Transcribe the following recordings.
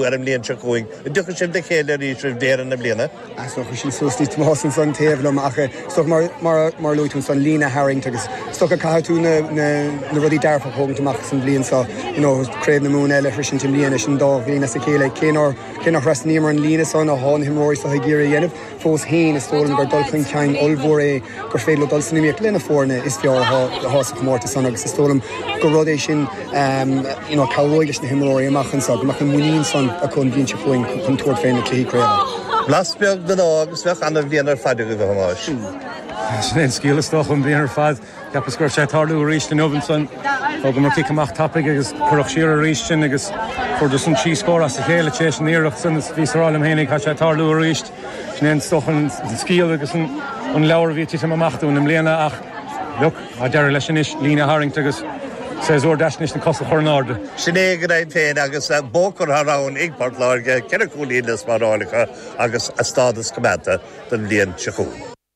ar an mbliain seo chugainn. An dtiocfaidh sibh le chéile arís roimh dheireadh na bliana? Á is dócha sin suas níos mó san san taobh liom ach is dócha mar mar mar a luaigh tú san líne a tharraingt agus is dócha caithfidh tú na na na rudaí dearfa a thógaint amach san bhliain seo you know craobh na Mumhan eile arís i mbliana sin dá bhliain as a chéile cé nár cé nár thrasnaíomar an líne san a tháinigh himreoirí soithigh iarraidh a dhéanamh Fós féin, is dóigh liom gur dul chun cinn ollmhór é gur féidir leo dul san iomaíocht le na foirne is fearr atá sa chomórtas san agus is dóigh liom gur rud é sin a chabhróidh leis na himreoirí amach anseo go mbeadh an muinín san acu an bhliain seo chugainn chun tabhairt faoi na cluichí craoibhe. Blas beag den ádh agus bheadh an-bhliain ar fad agaibh, a Thomáis. Sin é an scéal is dócha, an bhliain ar fad. Cheapas go raibh sé ag tarlú arís inniu ansan thugamar cic amach tapaidh agus cuireadh siar arís sinn agus fuaireadar san trí scór as a chéile tar éis an iarracht san is bhíos ag rá liom féin ó tá sé ag tarlú arís. Sin é is dócha an scéal agus an leabhar a bhí ag titim amach dúinn i mbliana ach look, tá deireadh leis anois, líne a tharraingt agus séasúr deas anois na cosa a chur in airde. Sin é go deimhin féin agus bua curtha ann ag Port Láirge, ceithre chúilín le spáráil acu agus a stádas coimeádta don bhliain seo chugainn.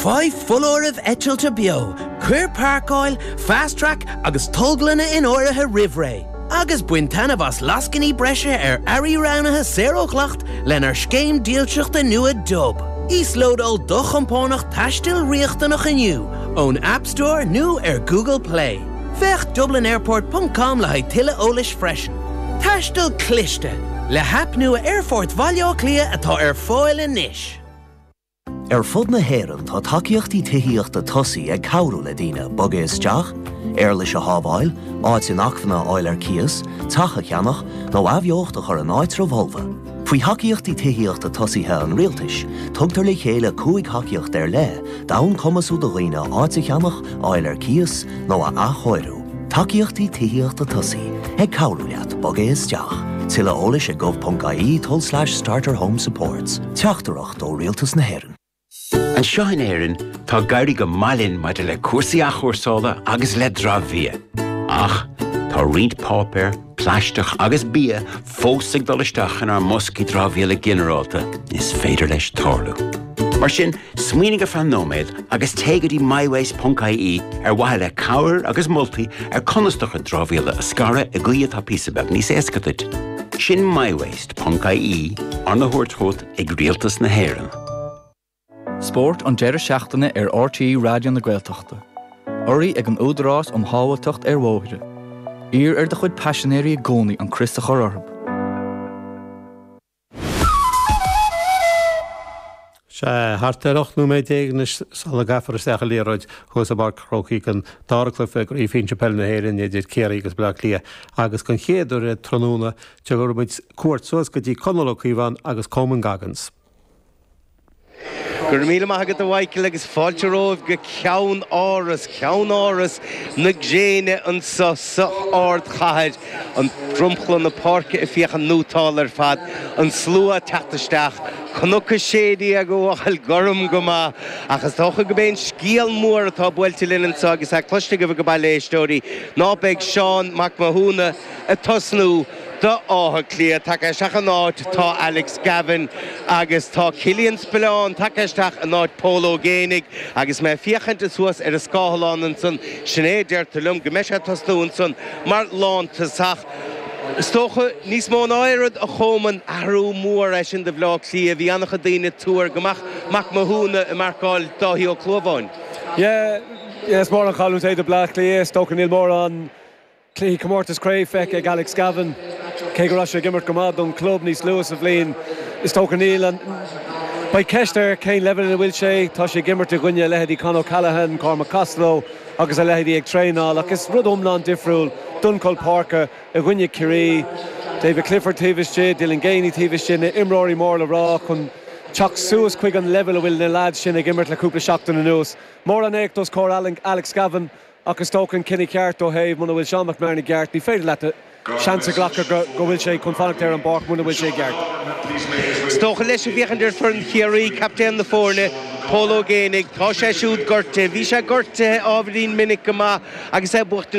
Faigh foláireamh eitilte beo, cuir Páirceáil, FastTrack agus Tolglanna in áirithe roimh ré, agus bain taitneamh as lascainí breise ar earraí roghnaithe saor ó dhleacht lenár scéim dílseachta nua Dub. Íoslódáil do chompánach taistil riachtanach inniu ón App Store nó ar Google Play. Féach dublinairport ponc com le haghaidh tuilleadh eolais freisin. Taisteal cliste, le haip nua Aerfort Bhaile Átha Cliath atá ar fáil anois. Ar fud na hÉireann tá tacaíochtaí tithíochta tosaigh ag cabhrú le daoine bogadh isteach, éarlais a shábháil, áit inacmhainne a fháil ar cíos, teach a cheannach, nó athbheocht a chur in áitreabh folamh. Faoi Thacaíochtaí Tithíochta Tosaigh an Rialtais, tugtar le chéile cúig thacaíocht ar leith d'fhonn cumasú do dhaoine áit a cheannach, a fháil ar cíos, nó a athchóiriú. Tacaíochtaí tithíochta tosaigh, ag cabhrú leat bogadh isteach. Tuilleadh eolais ag gov.ie tulslais starter home supports. Teachtaireacht. ó Rialtas na hÉireann. Anseo in Éirinn, tá ag éirí go maith linn maidir le cúrsaí athchúrsála agus le dramhbhia. Ach, tá roinnt páipéar, plaisteach agus bia fós ag dul isteach inár mboscaí dramhaíola ginearálta, is féidir leis tarlú. Mar sin, smaoinigh ar feadh nóiméad agus téigh go dtí mywaste.ie ar mhaithe le cabhair agus moltaí ar conas do chuid dramhaíola a scaradh i gcaoi atá píosa beag níos éasca duit. Sin mywaste.ie arna thabhairt chugat ag Rialtas na hÉireann. Spórt an deireadh seachtaine ar RTÉ Raidió na Gaeltachta. Urraí ag an Údarás um Shábháilteacht ar Bhóithre. Iarr ar do chuid paisinéirí i gcónaí an crios a chur orthu. Sea, thart ar 18 nóiméad anois sula gcaithfear isteach an liathróid thuas i bPáirc Chrócaigh an dara cluiche i gCraobh Shinsir Peile na hÉireann idir Ciarraí agus Baile Átha Cliath agus den chéad uair tráthnóna Tabharfaimíd cuairt suas go dtí Conall Ó Cíobháin agus Coman Goggins. Go raibh míle maith agat a Mhichíl agus fáilte romhaibh go Ceann Áras, Ceann Áras na gréine anso san ardchathair. Dromchla na páirce ag féachaint neotáil ar fad, an slua ag teacht isteach, Cnoc a Sé Déag ag fáil gorm go maith. Ach is dócha gurb é an scéal mór atá buailte linn anso agus é cloiste agaibh age baile a éisteoirí ná beidh Seán Mac Mathúna, ag tosnú d'Áth Cliath. Tagtha isteach ina áit tá Alex Gavin agus tá Cillian Spillane tagtha isteach in áit Pól Ó Géibheannaigh agus mé ag féachaint suas ar an scáileán ansan sin é a deirtear liom go mbeidh sé ag tosnú ansan mar lántosach. Is dócha níos mó ná aon rud a Chomáin athrú mór é sin do Bhleá Cliath. Bhí an-chuid daoine ag tuar go mbeadh Mac Mathúna ag marcáil Dáithí Ó Clúmháin. Yeah, yeah, is mór an chailliúint é do Bleá Cliath. Is dócha níl mórán cluichí comórtas craoibhe feicthe ag Alex Gavan Cé go raibh sé ag imirt go maith don club níos luaithe sa bhliain, is dócha níl an Beidh ceist ar cén leibhéal ina bhfuil sé. Tá sé ag imirt i gcoinne leithéidí Con O'Callaghan, Cormac Costello agus a leithéidí ag traenáil ach is rud iomlán difriúil dul chun páirce i gcoinne Ciarraí. David Clifford taobh istigh, Dylan Geaney taobh istigh, na imreoirí mór le rá chun teacht suas chuig an leibhéal a bhfuil na leaids sin ag imirt le cúpla seachtain anuas. Mór an éacht os comhair Alex Gavan. Ach is dócha an cinneadh ceart ó thaobh muna bhfuil Seán McMahon i gceart, ní féidir leat seans a ghlacadh go bhfuil sé chun fanacht ar an bpáirc muna bhfuil sé i gceart. Is dócha leis ag féachaint ar foireann Chiarraí, captaen na foirne, Pól Ó Géibheannaigh, tá sé siúd gortaithe, bhí sé gortaithe ábhairín minic go maith agus é buachtaint.